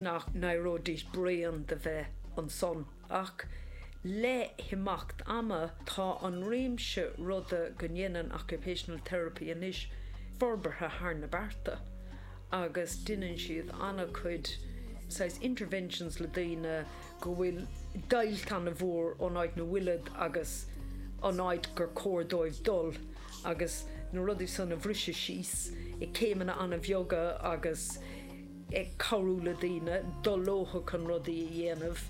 nach n-éireoidís bréan de bheith ansan ach le himeacht ama tá an réimse ruda go ndéanann occupational therapy anois forbartha thar na bearta agus deineann siad an-chuid saghas interventions le daoine go bhfuil deighilt an-mhór ón áit na bhfuilid agus an áit gur cóir dóibh dul agus na rudaí san a bhriseadh síos i céimeanna an-bheaga agus. ag cabhrú le daoine dul leothu chun rudaí a dhéanamh,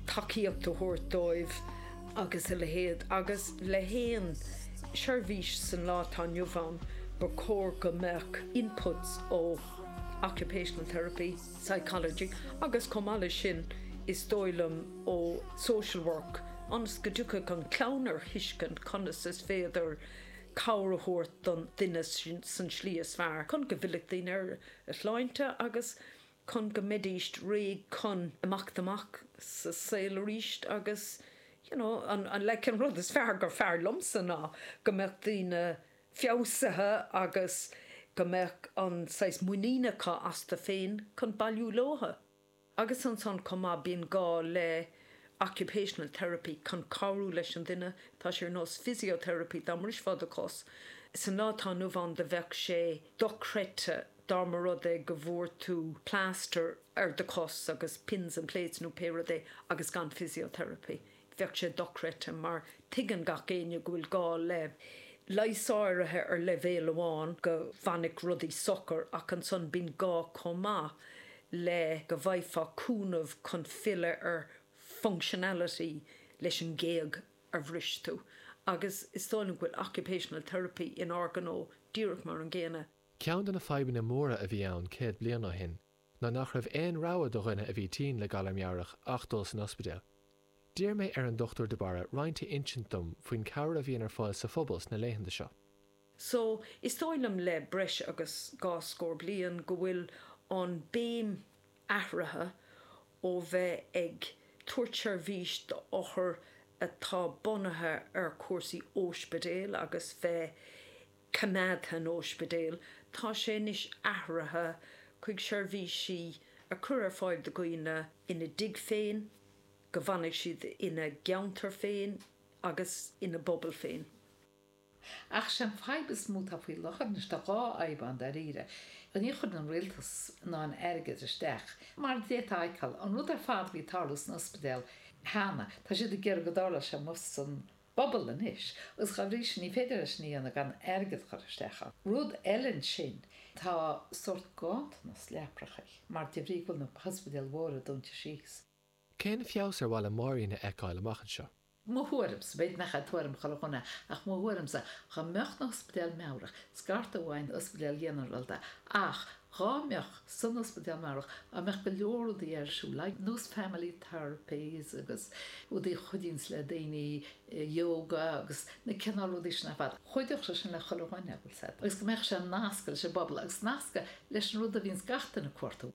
tacaíocht a thabhairt dóibh agus a leithéid, agus le haon seirbhís san lá atá inniu ann ba chóir go mbeadh inputs ó occupational therapy, psychology agus chomh maith leis sin is dóigh liom ó social work ionas go dtiocfadh an clann ar thuiscint conas is féidir cabhair a thabhairt don duine sa tslí is fearr chun go bhfillfeadh duine ar a shláinte agus chun go mbeidíst réidh chun imeacht amach sa saol aríst agus you know an an like an rud is fearr gur fearr liomsa ná go mbeadh daoine feabhsaithe agus go mbeadh an saghas muinín acu astu féin chun bailiú leothu. Agus ansan chomh maith bíonn gá le occupational therapy chun cabhrú leis an duine tá sé ar nós physiotherapy dá mbrisfeá do chos san lá atá inniu ann do bheadh sé dochreidte dá mba rud é go bhfuair tú plaster ar do chos agus pins and plates nó pé rud é agus gan physiotherapy Bheadh sé dochreidte mar tuigeann gach éinne go bhfuil gá le leigheas áirithe ar leibhéal amháin go bhfanfadh rudaí socair ach ansan bíonn gá chomh maith le go bhfaighfeá cúnamh chun filleadh ar functionality leis an ghéag a bhris tú agus is dóigh liom go bhfuil occupational therapy in ár ngnó díreach mar an gcéanna. Ceann de na fadhbanna móra a bhí ann céad bliain ó shin ná nach raibh aon rogha do dhuine a bhí tinn le galar meabhrach ach dul san ospidéal. D'iarr mé ar an Dr de Barra roinnt a insint dom faoin cabhair a bhíonn ar fáil sa phobal sna laethanta seo. So, is dóigh liom le breis agus dhá scór bliain go bhfuil an béim athraithe ó bheith ag tabhairt seirbhís do othair atá bunaithe ar chúrsaí ospidéil agus bheith coimeádtha in ospidéal. Tá sé anois athraithe chuig seirbhísí a chur ar fáil do dhaoine ina dtigh féin, go bhfanfaidh siad ina gceantar féin agus ina bpobal féin. Ach sé'n fadhb is mó atá faoi láthair anois, tá dhá fhadhb ann dáiríre, níor chuir an rialtas an t-airgead isteach mar a d'fhéadfá a fheiceáil. An rud ar fad a bhí ag tarlú san ospidéal cheana, tá siad ag iarraidh go dtarlódh sé amuigh san bpobal anois agus dá bhrí sin ní féidir leis sin a dhéanamh gan airgead a chur isteach ann. Rud eile ansin, tá sórt ganntanas leaprachaí mar de bhrí go bhfuil na hospidéil mhóra dúnta síos. Cén feabhas ar mhaith le Máirín a fheiceáil amach anseo? Mo thuairimse, b'fhéidir nach é tuairim chuile dhuine, ach mo thuairimse, dá mbeadh na hospidéil meabhrach, scarta amach ón ospidéal ghinearálta, ach Dhá mbeadh san ospidéal meabhrach dá mbeadh go leor rudaí ar siúl, like nós family therapies agus rudaí a chuidíonns le daoine, yoga agus na cineál rudaí sin ar fad. Chuideodh sé sin le chuile dhuine, a bhfuil fhios agat, agus go mbeadh sé nasctha leis an bpobal agus nasctha leis an rud a bhíonns gach duine ag cuartú.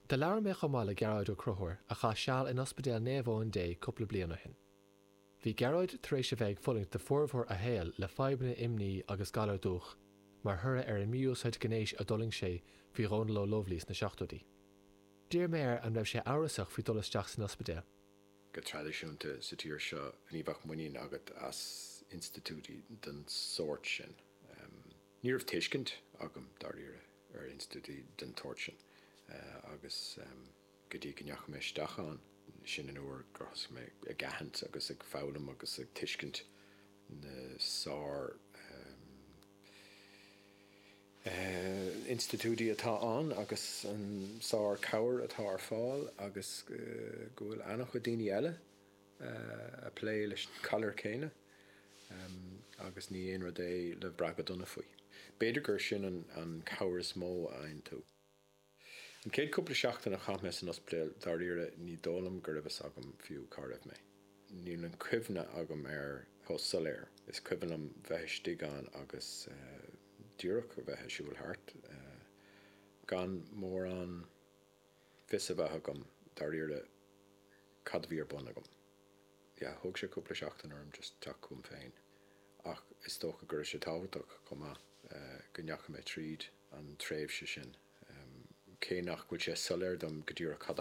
Do labhair mé chomh maith le Gearóid Ó Crothúir a chaith seal in Ospidéal Naomh Eoin Dé cúpla bliain ó shin. Bhí Gearóid tar éis a bheith ag fulaingt do formhór a shaoil le fadhbanna imní agus galar dúch mar thoradh ar an mí-úsáid gnéis a d'fhulaing sé faoi Dhónal Ó Lubhlaí sna seachtóidí. D'iarr mé air an raibh sé amhrasach faoi dul isteach san ospidéal. Go traidisiúnta sa tír seo ní bheadh muinín agat as institiúidí den sórt sin. Ní raibh tuiscint agam, dáiríre, ar institiúidí den tsórt sin agus. go dtí go ndeachaigh mé isteach ann. Sin an uair gur thosaigh mé ag aithint agus ag foghlaim agus ag tuiscint na sár institiúidí atá ann agus an sár cabhair atá ar fáil agus go bhfuil an-chuid daoine eile ag plé leis an galar céanna agus ní aon rud é le brath go dona faoi. B'fhéidir gur sin an cabhair is mó a fhaigheann tú. An chéad cúpla seachtain a chaith mé san ospidéal dáiríre ní dóigh liom go raibh fhios agam fiú cá raibh mé. Níl an chuimhne agam air chomh soiléir. Is cuimhin liom bheith istigh ann agus díreach a bheith a' siúl thart gan mórán fios a bheith agam dáiríre cad a bhí ar bun agam. Yeah, thóg sé cúpla seachtain orm just teacht chugam féin ach is dócha go raibh sé tábhachtach chomh maith go ndeachaigh mé tríd. an tréimhse sin, cé nach bhfuil sé soiléir dom go díreach cad a